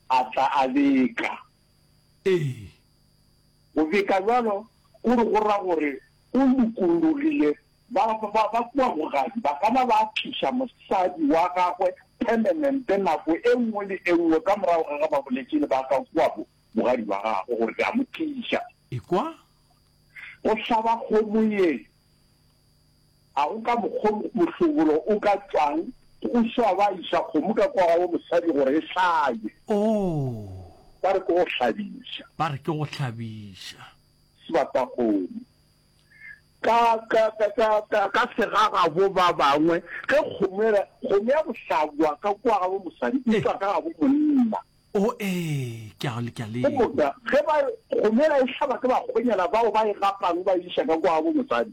a tla a beka. Ee. Go beka bjalo go re go ra gore o lokologile. Ba ba ba kua bogadi ba ka na ba tliša mosadi wa gagwe permanent nako e nngwe le e nngwe ka morago ga ge ba boletše le ba ka kua bo bogadi ba gagwe gore ke a mo tliša. Ekwa. Go hlaba kgomo ye. A go ka mokgo mohlobolo o ka tšwang go swa ba iša kgomo ka kwa ga wo mosadi gore e hlabe? Oo! Ba re ke go hlabiša. Ba re ke go hlabiša. Sebatakgomo. Ka, ka, ka, ka, ka, ka segagabo ba bangwe, ge kgomo e re, kgomo ya go hlabwa ka kwa ga wo mosadi e tšwa ka ga bo monna. O ee, ke a, ke a le. Go motla, ge ba re, kgomo ela e hlaba ke bakgonyana bao ba e gapang ba e iša ka kwa ga bo mosadi.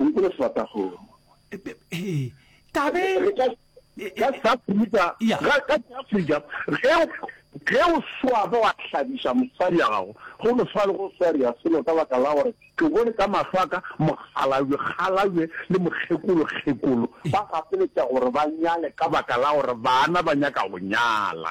O nkole sebata go. He, ka be. Re ka, ka South Africa, Ya. ga- ka South Africa, ge o, ge o swaba wa hlabiša mosadi ya gago, go no swana le go swaria selo ka baka la gore ke bone ka mahlo a ka mokgalabje kgalabje le mokgekolo kgekolo ba gapeletša gore ba nyale ka baka la gore bana ba nyaka go nyala.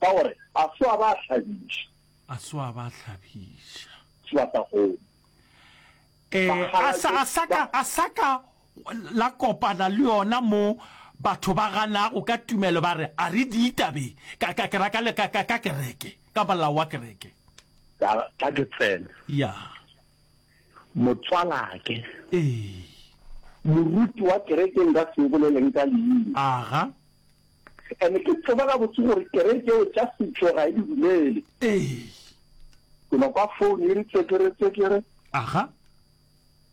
Ka gore a swa ba hlabiša. A swa ba hlabiša. Swa sa kgone. Eh, a sa, a sa ka, a sa ka la kopana le yona mo batho ba ganago ka tumelo ba re a re di itabe ka ka ke raka le ka ka ka kereke ka molao wa kereke ka ka ke tsena ya motswalake eh moruti wa kereke nka se boleleng ka leina aga And-e ke tseba gabotse gore kereke yeo tša setšo ga e di dumele. Ee. Ke no kwa phone e re tsekere-tsekere. Aha.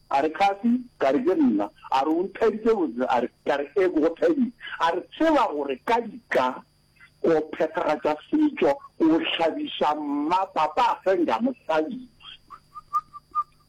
A re Kathy, ka re ke nna. A re o nthabitse botse? A re, ka re ee, ke go thabile. A re tseba gore ka dika ko phethagatša setšo, ko hlabiša mma, papa a fenga mosadi.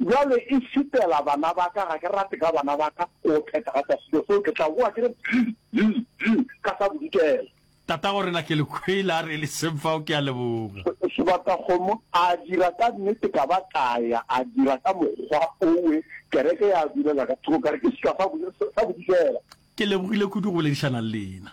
Bjale e šitela bana ba ka, ga ke rate ka bana ba ka go phethagatša selo seo, ke tla boa ke re bzi, bzi, bzi ka sa bodikela. Tatagorena Kelekwele a re e le seng fao, ke a leboga. Sebatakgomo a dira ka nnete, ka ba ka ya, a dira ka mokgwa owe, kereke ya bulela ka thoko, ka re ke seka sa bodikela. Ke lebogile kudu go boledišana le lena.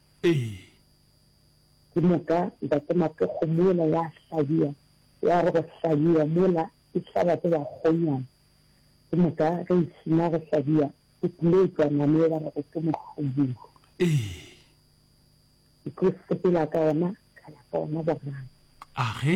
Ee. Ke moka Ntate Mapekgo mola ya hlabja, ya re go hlabja mola e hlaba ke bakgonyana. Ke moka ge e sena go hlabja go tlile etšwa nama e ba rego ke mohlobulu. Ee. Ke tlo sepela ka ona, ka ya ka ona boraro. Age.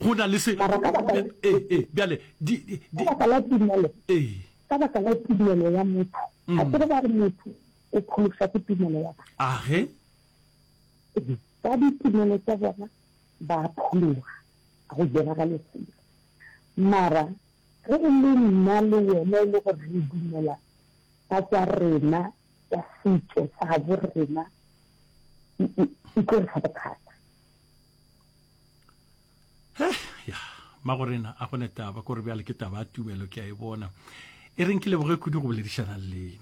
go na le se. Mara ka baka la, ee, ee, bjale, di, di, ka di, baka la tumelo, ee, ka baka la tumelo ya motho, ga se re ba re motho o pholoswa ke tumelo ya batho. age, Ee, Ka ditumelo tša bona ba a phologa, ga go diragale selo. Mara ge e le nna le wena e le gore re dumela ka tša rena tša setšo sa gabo rena, e, e, e tlo re fa bothata. he ya magorena a gone taba kore bjale ke taba ya tumelo ke a e bona e reng ke leboge kudu go boledišana le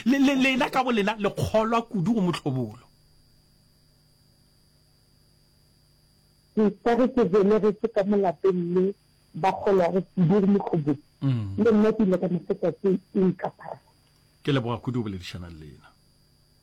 lena lena ka bolena le kgolwa kudu go motlhobolo ka re ke belegetse ka molapeng le ba kgolwago kudu go motlhobolo mm. le nna ke ile ka mofeta ke inkaphara ke leboga kudu go boledišana le lena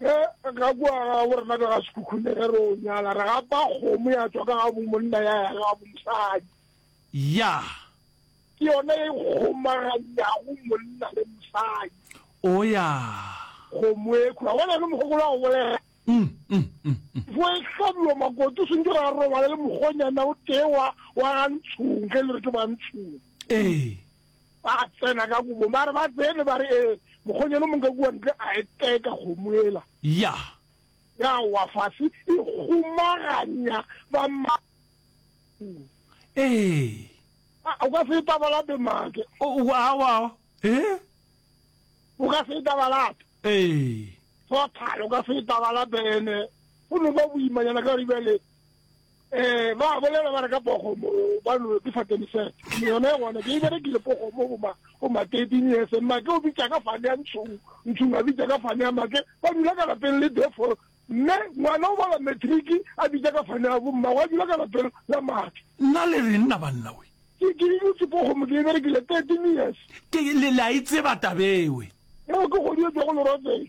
Ge ga kua ga bo rena ka ga sekhukhune ge re o nyala, re gapa kgomo ya tswa ka ga bomonna ya ya ga bomosadi. Ya. Ke yona e kgomaganyago monna le mosadi. O ya. Kgomo e khura. Bona le mogogolo wa go bolela. Mm, mm, mm, mm. Fo e hlabiwa makoto, o swantse ra robala le mogonyana o tee wa, wa ga ntshong, ge le re ke ba ntshong. Ee. Ba tsena ka kobo, ba re ba tsene, ba re, Ee, mokgonyana o mong ka kua ntle a eteka kgomo ela. Ya. Ya wa fase, e kgomaganya ba ma. Ee. A, o ka se e tabalape make. O, o, awa, ee. O ka se e tabalape. Ee. Total, o ka se e tabalape, ene, go no ba boimanyana ka gore bjale, Eh, ba bolela ba re ka pogo mo ba no ke fa teni set. Ni yona yona ke ibere ke le pogo mo ba o ma tedi ni ese ma ke o bitsa ka fa ya ntsu. Ntsu ma bitsa ka fa ya ma ke ba dula ka lapeng le defo. Mme ngwana o bala matric a bitsa ka fa ya bo mma wa dula ka lapeng la mathe. Nna le re nna banna we. Ke ke ibutse pogo mo ke ibere ke le 13 years. Ke le la itse batabewe. Yo ke go di go lo rotse.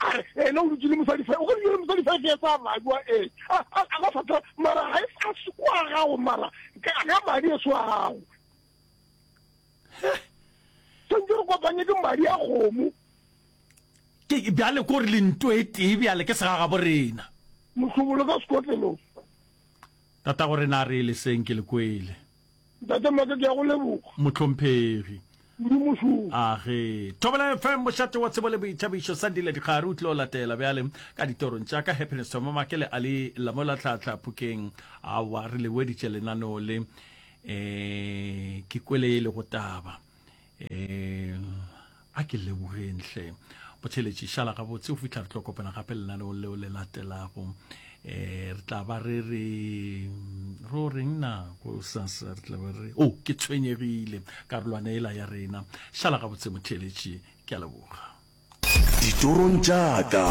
a re ena o dutse le mosadi fa o ka dutse le mosadi fa ke etsa magwa e a a ba fata mara ha e sa sekwa gago mara ka ga madi e swa gago sentse re kopanye ke madi a gomo ke bjale ko re lento e tee bjale ke segaga bo rena mohlobolo ka sekotlelo tata gore na re le seng ke le kwele Ntate Maka, ke a go leboga. Mohlomphegi. Kudu mošomo. Age. Thobela FM, mošate wa tsebo le boithabišo. Sandile Dikgare o tlilo latela bjale ka ditorong tša ka Happiness Thoma Make le Ali Lamola Tlhatlha Phukeng. Awa, re le weditše lenaneo le. Eh, ke kwele e lego taba. um a ke lebogeng hle botheletši šala gabotse go fitlha re tlo kopana gape lenaneo leo le latelago um re tla ba re re ro reng na ko sasa re tla ba re o oh, ke tshwenyegile karolwana ela ya rena šala gabotse motheletši ke a leboga Ditorong tša ka.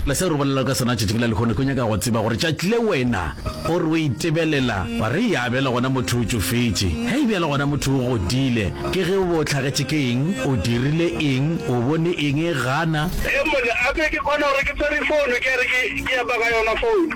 Le seo re bolelago ka sona tšatši bjale lehono, ke nyaka go tseba gore tšatši le wena o re o itebelela, wa re, Yaa, bjale gona motho o tšofetše. Hei, bjale gona motho o godile. Ke ge o be o hlagetše ke eng, o dirile eng, o bone eng, gana. Ee, mone, a ke, ke kgona gore ke swere founo, ke a re ke, ke epa ka yona founo.